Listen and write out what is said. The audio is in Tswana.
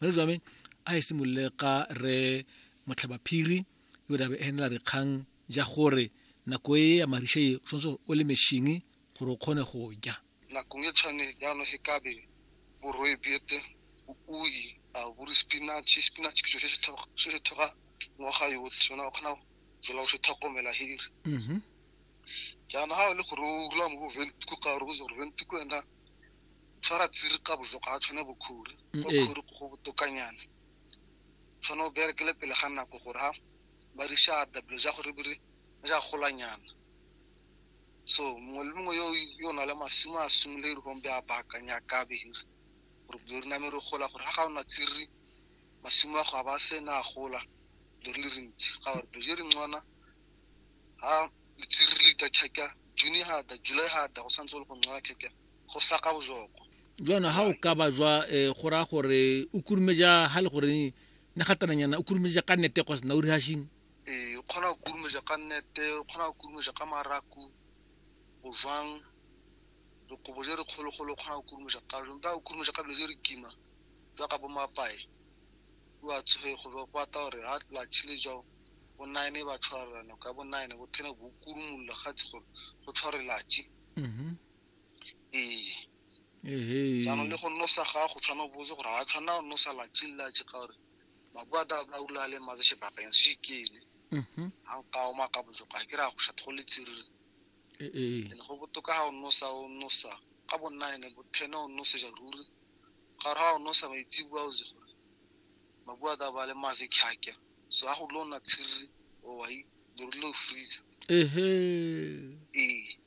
mare jwame a e simolole ka re motlhabaphiri yo dabe e henela dikgang ja gore nako e ya marishe e tshwanetse o le mešhingi gore o kgone go ja nakong e tshwane jaanong e kabe boroe bete ui a bore spinach spinach ke so se se thoga ngwaga yotlhe sona o kgona tsela o se tlhokomela here mm-hmm. jaana ga o le gore o rula mo boventiko ka gore o gore boventiko ena tshwara tsiri ka bojo ga a tshwane bokhuri mm, kwa khuri go botokanyana tshwane o berekele pele ga nako gore ha ba re sha dabelo ja gore bere ja golanyana so mongwe le mongwe yo yo na le masimo a simole re gombe a baakanya ka behiri gore bjo re name re gola gore ga ga ona tsiri masimo a go a ba sena a gola bjo re le rentsi ga gore bjo re ngwana ha letsiri le ka kheka june ha da july ha da go santse le go ngwana kheka go saka bojoko jona ha o ka ba jwa eh, go raya gore o kurumeja ha le gore ne gatananyana o kurumeja ka nete kwa sena o rehashing ee o kgona go kurumeja ka nnete o kgona go kurumeja ka maraku go jwang dikobo je re kgologolo o kgona go kurumeja ka jong ba o kurumeja ka dilo je re kima jaaka bo mapae o a tshoge go jwa go ata gore ha la chile jao bo nine ba tshwarela nako ya bo nine bo ten bo kurumolola ga tse gore go tshware latši Mhm. ee jaanong le go nosa gago tshwana botse gore ga tshwana o nosa la chilla che ka gore makwata ba ula le matse she bakeng se kele mhm. ha nka o maka botse ka ke ra go shatho le tsiri ee le go botoka ha o nosa o nosa ka bonna ene bo thena o nosa ja ruri ga ra o nosa ba itse bua o ze gore makwata ba le matse khakya so ha go lona tsiri o wa i lo lo freezer ehe ee